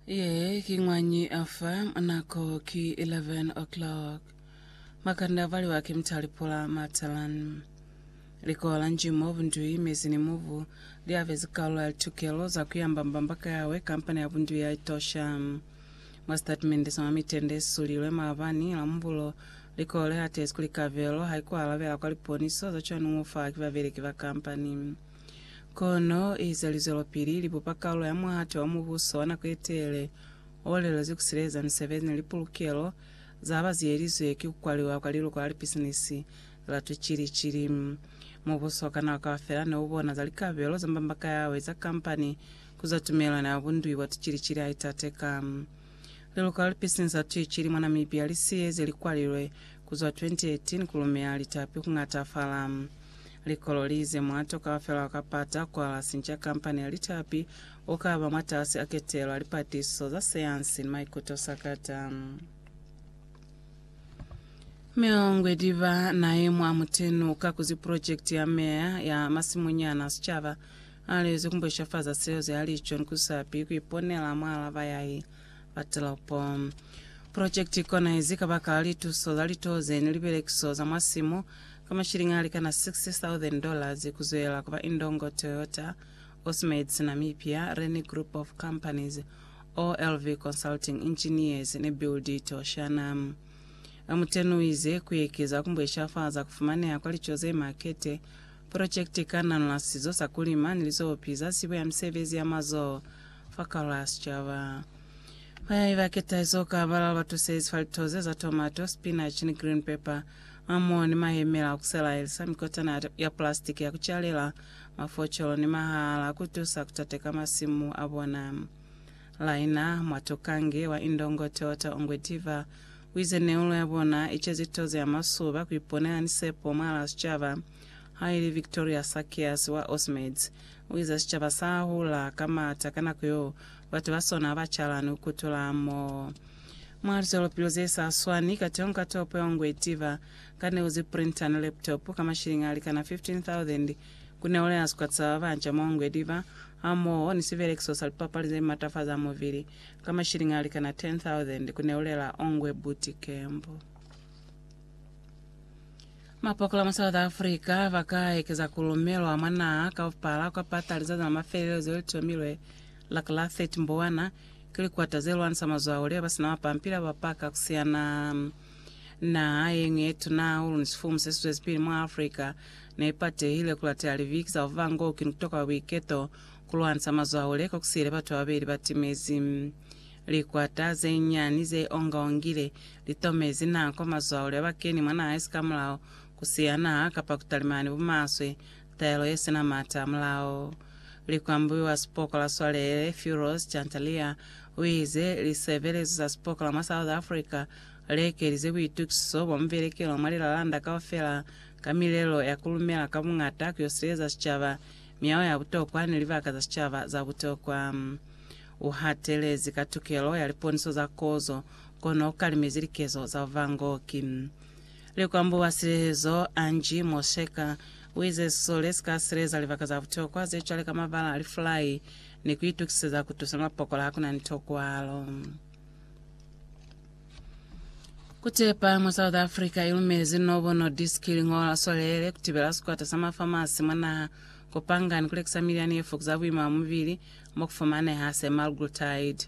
Ye ki ng'wanyi afa nako ki 11 o'clock. Makanda valiwa ki mtalipula matalan. Likola njimo bundui mezi ni mubu liabezi kalulo ya litukelo za kuyamba mbamba ka yawe kampani ya bundui ya Etosha. Mwa sitatimende sa mwa mitende yesulilwe maabani Lambulo, likola lihatezi kuli kabelo haikualabela kwa liponiso za cwanuo faha ki babeleki ba kampani. Kono eza lizwelopili libupa kalulo ya muhate wa Mubuso wa nako yetelele olelezwi kusileza misebezi ni lipulukelo zaba ziyelizwe ki kukwaliwa kwa liluko la lipisinisi la tucili-cili. Mubuso wa ka nako kaufela neubona za likabelo za mbambaka yawe za kampani kuzwa tumelelano ya bundui bwa tucili-cili haitateka. Liluka li pisinza tuicili mwa Namibia li siyeze likwalilwe ku zwa 2018 ku lumea litapi ku ngatafala. Likolo li ize mwa toka fela ka pata kwa la sinca kampani ya litapi u ka ba mwatasi a ketelo ya lipatiso za sayansi ni maikuto sakata. Miongwe diba nae mwa mutenu ka kuzi purojekiti ya meya ya masimunyana a sicaba. Ha li zwi ku bushafaza seo ze a li John ku sapi ku iponela mwa lava ya i ba telopo. Project kona izi kabakala lituso za litoze ni libelekiso za mwa simu ka mashilingi a likana $60,000 ku zwela ku ba Indongo Toyota, Osmades Namibia, Reni Group of Companies, OLV Consulting Engineers ni Build It Oceana. Muteni u ize ku ekeza ku bushafaza ku fumaneha kwa lico ze makete Projekte i ka nanola sizo sa ku lima ni lizopi za zibo ya misebezi ya mazoho fa karolo ya sicaba. Bayai ba ke tahizo ka balala ba tusezi fa lito ze za tomato, spinach ni green pepper, hamoho ni mahemela a ku selaelisa, mikotana ya pulastiki ya ku calela, mafocolo ni mahala a ku tusa ku tateka masimu a bona. Laina Mwatokange wa Indongo Toyota Ongwediva Kuize neulo ya bona ica zito ze ama suba kuiponela ni sepo mwalaa sicaba. Haili Victoria Sakias wa Osmeds, uiza sicaba sa hula ka mata ka nako yo batu ba sona haba calani ku kutula moo. Mwa lizwelopili ze sa swani, kateho ka topo ya ngwe itiva ka neu ze printer ni laptop ka mashilingi alikana 15,000 ku neulo ya sikwata sa babanca mwa ngwe diba, hamoho ni sibelekiso sa lipapali ze matafaza mubili. ka mashilingi a likana 10,000 ku neulela Ongwe Buti Kembo. Mapokola mwa South Africa ba ka ekeza ku lumelwa mwa naha kaupala kwa pata lizazi la mafelelo zeo li tomilwe la ka la 30 Mbowana ki likwata ze lwanisa mazwauli ba ba si na mapampili a ba paka ku siana. Naha ye ñwi ye tuna hahulu ni sifumu se si zwezipili mwa Africa ne i patehile ku latela libiki za ku ba ngou ki ni ku toka kwa buiketo Ku lwansa mazwaule ka ku siyile batu bababeli ba timezi. Likwata ze nyani ze ongaongile li tomezi nako mazwaule a ba keni mwa naha esikamulaho, ku siya naha kapa ku talimani bumaswe, taelo ye sina mata hamulaho. Likwambubi wa sipoko la swalele Firoz Chantalia u ize lisebelezo za sipoko la mwa South Africa li ekelize buitukiso bwa muvelekelo mwa lilalanda kaufela ka milelo ya ku lumela ka bungata ku yo sileleza sicaba Miyao ya butokwa ni libaka za sicaba za butokwa. U hatelezi ka tukelo ya liponiso za kozo, kono u kalimezi likezo za buvangoki. Likwambo wa silehezo, Angie Mosheker, u ize sisole si ka sileza libaka za butokwa ze cwale ka mabala a lifulai ni ku itukiseza ku tusa mapokola ha ku na ni tokwalo. Kutepa mwa South Africa ilumezi nobo no disk lingola solele kutibela sikwata sa mafamasi mwa naha kupanga ni kulekisa milyani ye fokuza buima bwa mubili mo kufumaneha semaglutide.